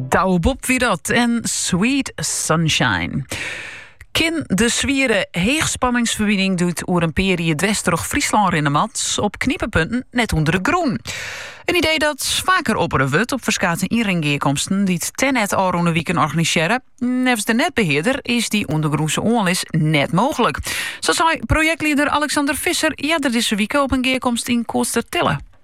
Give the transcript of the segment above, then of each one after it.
Douwe Bob wie dat en Sweet Sunshine. Kin de swiere heechspanningsferbining doet oer een pear jier dwers troch Fryslân rinne moat, op knipepunten net ûnder de grûn. In idee dat faker oppere wurdt op ferskate ynringgearkomsten dy't Tennet ôfrûne wiken organisearre. Neffens de netbeheerder is die ûndergrûnse oanlis net mooglik. Sa sei projektlieder Alexander Visser earder dizze wike op in gearkomste yn Koatstertille.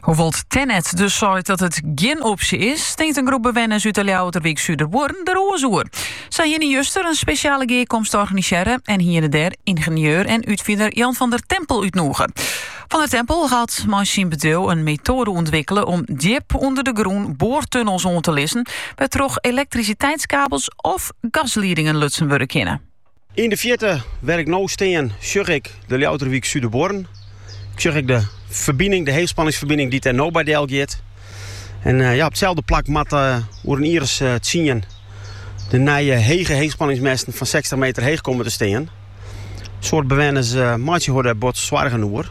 Hoewol't Tennet dus seit dat it gjin opsje is, tinkt in groep bewenners út de Ljouwerterwyk Suderbuorren der oars oer. Sy hiene juster in spesjale gearkomste organisearre en hiene dêr yngenieur en útfiner Jan van der Tempel útnûge. Van der Tempel hat mei syn bedriuw in metoade ûntwikkele om djip ûnder de grûn boartunnels oan te lizzen, wêrtroch elektrisiteitskabels of gasliedingen lutsen wurde kinne. Yn de fjirte wêr't ik no stean sjoch ik de Ljouwerterwyk Suderbuorren. Ik sjoch ek de ferbining, de heechspanningsferbining dy't dêr no by delgiet. En eh, ja, op itselde plak moat eh, oer in jiers eh, tsien de nije hege heechspanningsmesten fan 60 meter heech komen te stean. In soad bewenners meitsje har daar bot soargen oer.